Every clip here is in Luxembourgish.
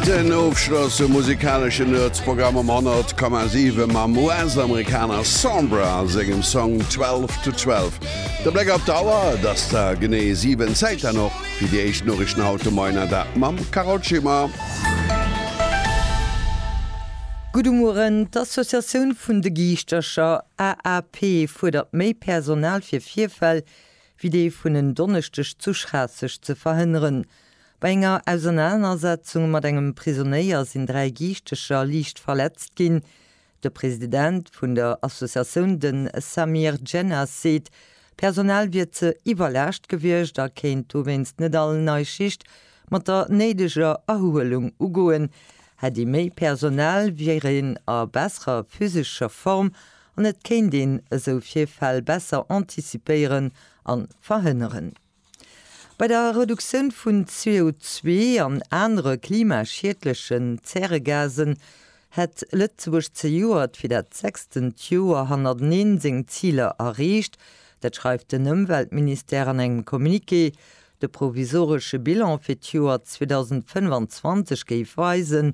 Den Ofschloss um musikalesche Nerds-Programm um 100,7 mam US-Amerikaner Sombra a sengem Song 12 to 12. De Bléck op d'Auer, et ass der genee 7, Zäit dann och fir déi éischt Noriichten haut de Moien, an dat mam Carole Schimmer. Gudde Mueren, D'Associatioun vun de Giischtercher, AAP, fuerdert méi Personal fir Virfäll wéi dee vun en Donneschdeg zu Schraasseg ze verhënneren. Bei enger Ausernanersetzung mat engem Prisonéier sinn dräi Giichtecher liicht verletzt ginn. De President vun der Associatioun, de Samir Djennas, seet, d'Personal wier ze iwwerlaascht gewiescht a kéint dowéinst net all nei Schicht mat der néideger Erhuelung ugoen. Hätt ee méi Personal, wier een a besserer physescher Form an et kéint een esou Virfäll besser antizipéieren a verhënneren. Bei der Reduktioun vun CO2 an anere klimaschiedlechen Zäregasen hätt Lëtzebuerg zejoert fir dat sechstent Joer hannerteneen seng Ziler erreecht. Dat schreift den Ëmweltministère an engem Communiqué. De provisoresche Bilan fir d'Joer 2025 géif weisen,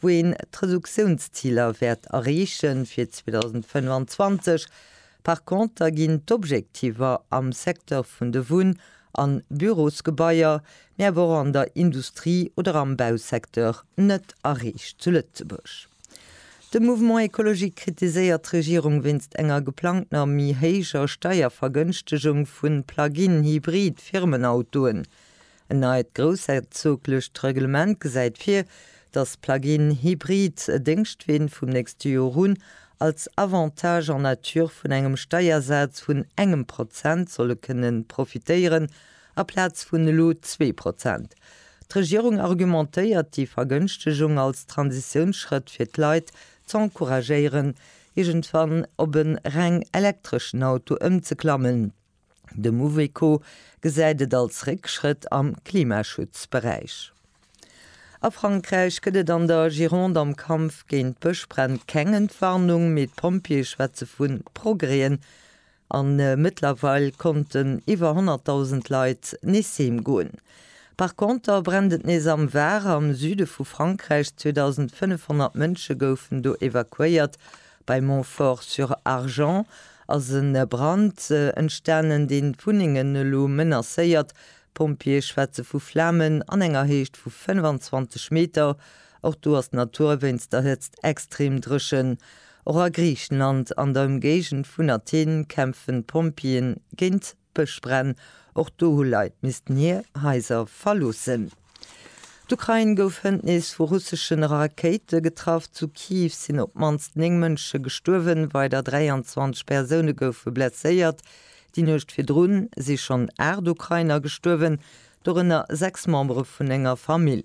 wou een d'Reduktiounsziler wäert erreechen fir 2025. Par conter ginn d'Objektiver am Secteur vun de Wunn a Bürosgebaier, mee awer och an der Industrie oder am Bausecteur net erreecht zu Lëtzebuerg. De Mouvement écologique kritiséiert d'Regierung wéinst enger geplangtener méi héijer Steiervergënschtegung vu Plug-in-Hybrid-Firmenautoen. En neit groussherzoglecht Reglement gesäit vir, datt d'Plug-in Hybrid e Déngschtween vum nächste Jor un als Avantage en nature vun engem Steiersaz vun engem Prozent solle kënne profitéieren, aplaz vun elo zwee Prozent. D'Regierung argumentéiert déi Vergënschtegung als Transitiounsschrëtt fir d'Leit z'encouragéieren, iergendwann op e reng elektreschen Auto ëmzeklammen. De Mouveco gesäit et als Réckschrëtt am Klimaschutzberäich. A Frankräich gëtt et an der Gironde am Kampf géint d'Bëschbränn keng Entwarnung, mee d'Pompjeeë schwätze vu Progrèsen a mëttlerweil konnten iwwer 100.000 Leit nees heem goen. Par Conter brennt et nees am Var, am Süde vu Frankräich. 2.500 Mënsche goufen do evakuéiert Bei Montfort-sur-Argens ass e Brand entstanen, dee Wunnengen elo menacéiert. D'Pompjeeë schwätze vu Flamen an enger Héicht vu 25 Meter. Och do ass d'Natur wéinst der Hëtzt extrem dréchen. Och a Griichenland an der Ëmgéigend vun Athen kämpfen d'Pompjeeë géint Bëschbränn, Och do hu Leit missten hir Haiser verloossen. D'Ukrain gouf hënt nees vu russesche Rakéite getraff. Zu Kiew sinn op d'mannst 9 Mënsche gestuerwen, weider 23 Persoune goufe blesséiert. Déi Nuecht virdrun si schonn 8 Ukrainer gestuerwen, dorënner 6 Membere vun enger Famill.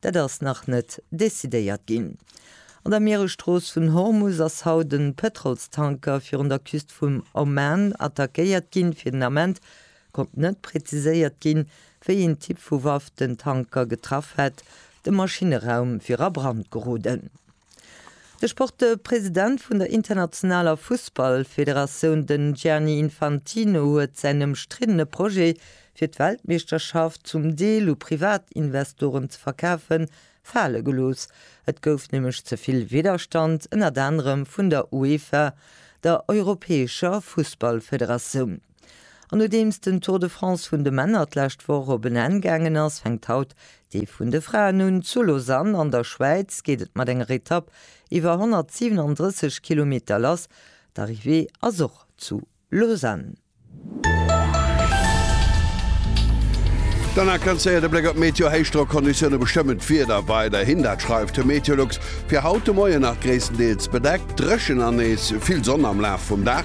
Dat ass nach net decidéiert ginn. An der Mieresstrooss vun Hormus ass haut e Pëtrolstanker virun der Küst vum Oman attackéiert ginn. Fir den Ament konnt net präziséiert ginn, wéi een Typ vu Waff den Tanker getraff hätt. De Maschineraum wier a Brand geroden. De Sportpresident vun der internationaler Fussballfederatioun, den Gianni Infantino, huet säin ëmstriddene Projet, fir d'Weltmeeschterschaft zum Deel u Privatinvestoren ze verkafen, fale gelooss. Et gouf nämlech ze vill Widderstand, ënnert anerem vun der UEFA, der europäescher Fussballfederatioun. An nodeems den Tour de France vun de Männer d'lescht Woch op en Enn gaangen ass, fänkt haut dee vun de Fraen un. Zu Lausanne an der Schwäiz geet et mat enger Etapp iwwer 137 Kilometer lass. D'Arrivée ass och zu Lausanne. D'Anna Kanzéer, De Bléck op d'Meteo, Héichdrockconditioune bestëmmen d'Wieder weiderhin. Dat schreift de Meteolux. Fir haut de Moien nach gréisstendeels bedeckt, dréchen an nees vill Sonn am Laf vum Dag.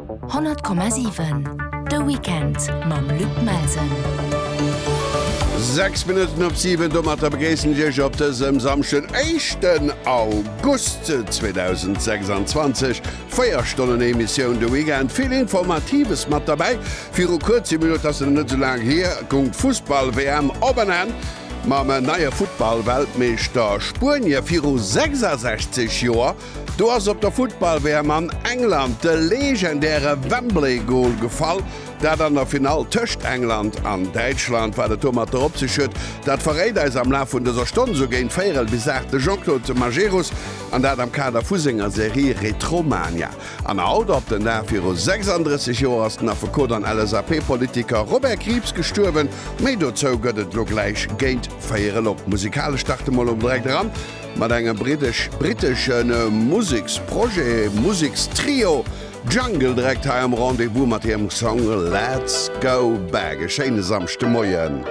100,7 De Weekend mam Luc Melsen. Sechs Minutten op siwen, Domatter begréissen ech Iech op dësem Samschden, éischten August 2026. Véier Stonnen Emissioun de Weekend, vill Informatives mat derbäi. Viru kuerzem, mir huet dat nach net esou laang hier, goung d'Fussball-WM op en Enn mam neie Futtball-Weltmeeschter Spuenie. Viru 66 Joer Do ass op der Futtball-WM an England de legendäre Wembley-Gol gefall. Dat an der Finall tëscht England an Däitschland. Wat et domatter op sech huet, dat verréit eis am Laf vun dëser Stonn esou géint véierel bis aacht de Jean-Claude Majerus, an dat am Kader vu senger Serie Retromania. An haut op den Dag viru 36 Joer ass den Affekot an LSAP-Politiker Robert Krieps gestuerwen. Méi dozou gëtt et elo gläich géint véierel. Op musikalesch starte mol um direkt eran. mat engem brittesch-brittesche Museksprojet, Musekstrio Jungle, direkt hei am Rendez-Vous mat hirem Song Let's Go Back. E schéine Samschdemoien.